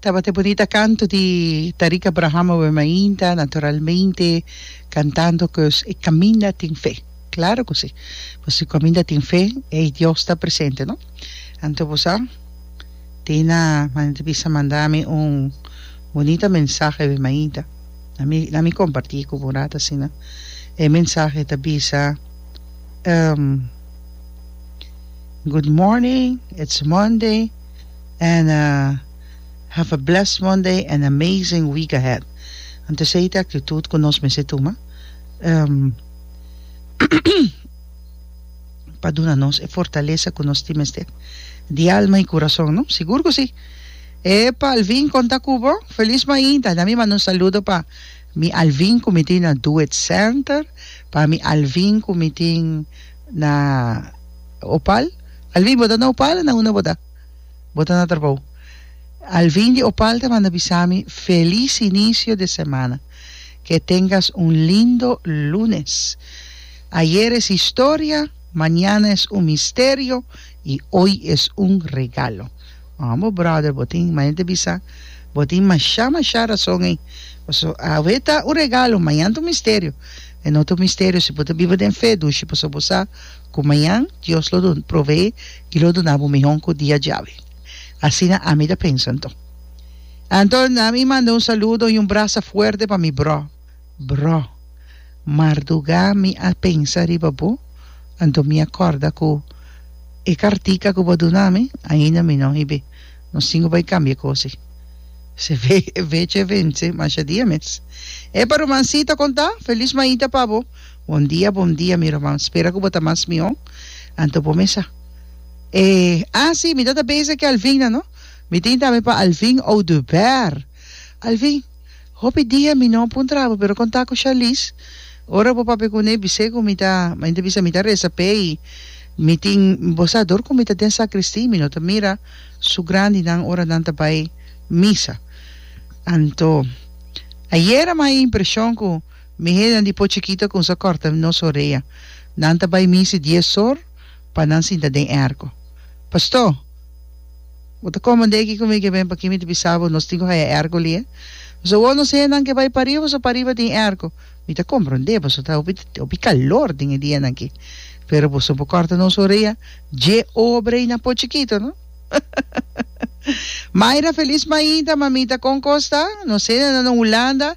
Tabata e bunita kanto di Tariq Abraham awe mainta, naturalmente kantando koos e kaminda tin fe. Klaro ku si. Pasobra si kaminda tin fe, ei Dios ta presente, no? Anto bo sa, tin na manera di bisa manda mi un bunita mensahe awe mainta. Na mi na mi komparti ku bo un rat asina. E mensahe ta bisa, Good morning, it's Monday. and uh have a blessed Monday and amazing week ahead. Anto esei ta e actitud cu nos mester tuma um pa duna nos e fortaleza cu nos tin mester di alma y curason, no? Sigur cu si. Epa Alvin conta cu bo? Feliz mainta. Na mi manda un saludo pa mi Alvin cu mi tin na Doet Center, pa mi Alvin cu mi tin Na Opal? Alvin, bo ta na Opal o na unda bo ta? Bo ta na trabou. Alvin di Opal ta manda bisa mi felis inicio de semana. Ke tengas un lindo lunes. Ayer es historia, mañana es un misterio y hoy es un regalo. Homo brother, bo tin manera di bisa. Bo tin masha masha rason ey. Pasobra awe ta un regalo, mañana ta un misterio. E no ta un misterio si bo ta biba den fe, dushi, pasobra bo sa ku mañan Dios lo proveé i lo duna bo mihon ku dia djawe. Asina ami ta pensa anto. Anto, ami manda un saludo i un brasa fuerte pa mi brò. Brò, mardugá mi a pensa riba bo, anto mi a kòrda ku e kartica ku bo a duna mi, ainda mi no hib'é. Nos tin ku bai kambia kosi. Se ve e fecha e vense masha dia mes. Epa Rumansita konta, felis maita pa bo. Bon dia bon dia mi Ruman, spera ku bo ta mas mihó. Anto bo mesa. E, ah si, mi tabata beza ku Alvin nan no. Mi tin tambe pa Alvin Oduber. Al fin, hopi dia mi no a puntra bo, pero con ta cu Charlize, ora bo papia cune, bis'é cu mi ta, mi ta bisa, mi ta reza p'e y mi tin, bo sa dor cu mi ta den sacristy, mi no ta mira su grandinan ora nan ta bay misa. Anto, ayer a mai impresion cu mihénan di po chikito a cunsá corta nos orea. Nan ta bay misa dies or, pa nan sinta den e arko. Pastó, bo ta komand'é aki ku mi ke ben p'akí mi ta bisa bo nos tin ku haya e arko li e. Nos a wou nos hende nan ke bai pariba boso pariba den e arko. Mi ta komprond'é boso ta hopi hopi kalor den e dianan aki, pero boso por kòrta nos orea dje obra i na por chikito no. Mayra, Felis mainta, Mamita, kon kos ta? Nos hende nan na Hulanda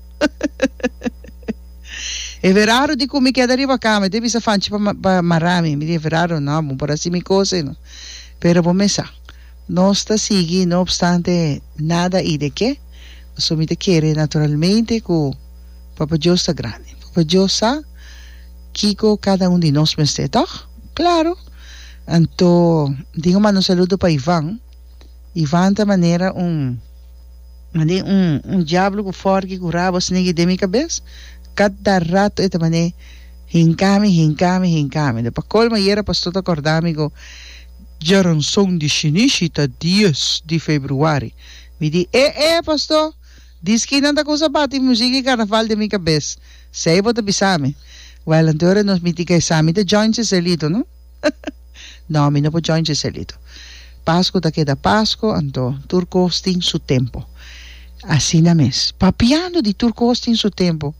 E verado di cu mi keda riba cama, mi ta bisa Fanchi pa mara mi, mi di e verado no, bo por haci mi cosa y no, pero bo mesa, nos ta sigui no obstante nada y de que, pasobra mi ta kere naturalmente cu Papa Dios ta grandi, Papa Dios sa kico cada un di nos mester, toch? Claro! Anto di un mano saludo pa Ivan. Ivan ta manera un mane un un diablo cu forgi cu rabo snigi den mi cabes, cada rato e ta mane hinca mi, hinca mi, hinca mi. Pa colmo ayer e pastor ta corda mi cu Geronson di Shinishi ta dies di februari, mi di e e pastor di skinan ta cusa bati music di carnaval den mi cabes, sey bo ta bisa mi? Well anto e ora nos miti guy sa mi ta join Cecelito no. No, mi no por join Giselito. Pasku ta keda Pasku, anto tur kos tin su tempo. Asina mes. Papiando di tur kos tin su tempo.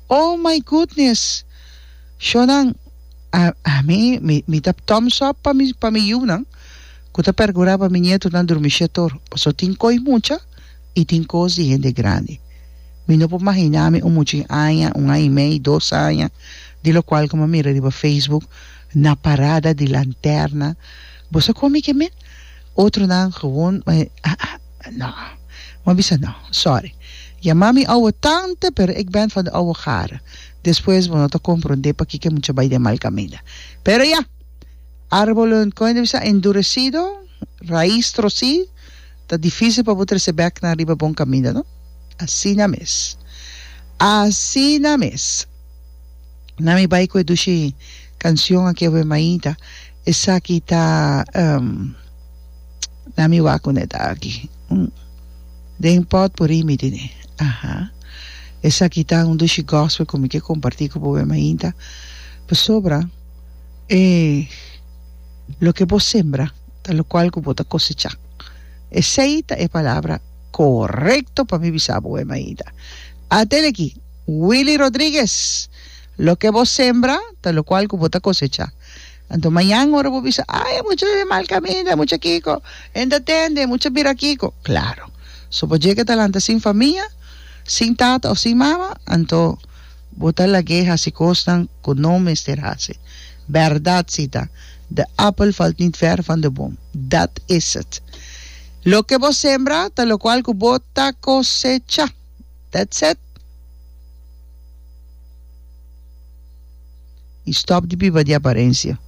Oh my goodness! Shonan, a, ami, mi, mi ta thumbs up pa mi, pa mi yunan ku ta pergura pa mi nietonan durmi shé tur. Paso tin koi mucha i tin kos di hende grandi. Mi no por mahiná mi un mucha aña, un aña i mei, dos aña, di lokual ku mi a mira riba Facebook, Na parada di lanterna boso a komi ke men? Otronan gewoon no. M'a bisa no, sorry. Yama mi ouwe tante pero ek bènt van de ouwe gare. Despues bo no ta komprondé pakiko e mucha bai den mal kaminda. Pero ya! Árbolonan, kon e ta bisa? Enduresido, rais trosí, ta difísil pa bo trese bèknan riba bon kaminda, no? Asina mes. Asina mes. Na mi bai cu e dushi cancion aki awe Maita. Esaki ta ehm na mi wak cu ne ta aki. Hm den pot por imi di ne. Aha. Esaki ta un dushi gospel cu mi ke comparti cu bo awe Maita. Pasobra e loke bo sembra ta locual cu bo ta cosecha. Esey ta e palabra corecto pa mi bisa bo awe Maita. Atende aki. Willy Rodriguez, Loke bo sembra, ta lokual ku bo ta kosecha. Anto mañan ora bo bisa, Ai, e mucha e mal kaminda, e mucha kiko, e no ta tende, e mucha bira kiko. Klaro, so bo djeke ta lanta sin famia, sin tata òf sin mama, anto bo ta lag'é hasi kosnan ku no mester hasi. Bèrdat si ta, De appel valt niet ver van de boom. Dat is het. Loke bo sembra, ta lokual ku bo ta kosecha. That's it. I stop di biba di aparencia.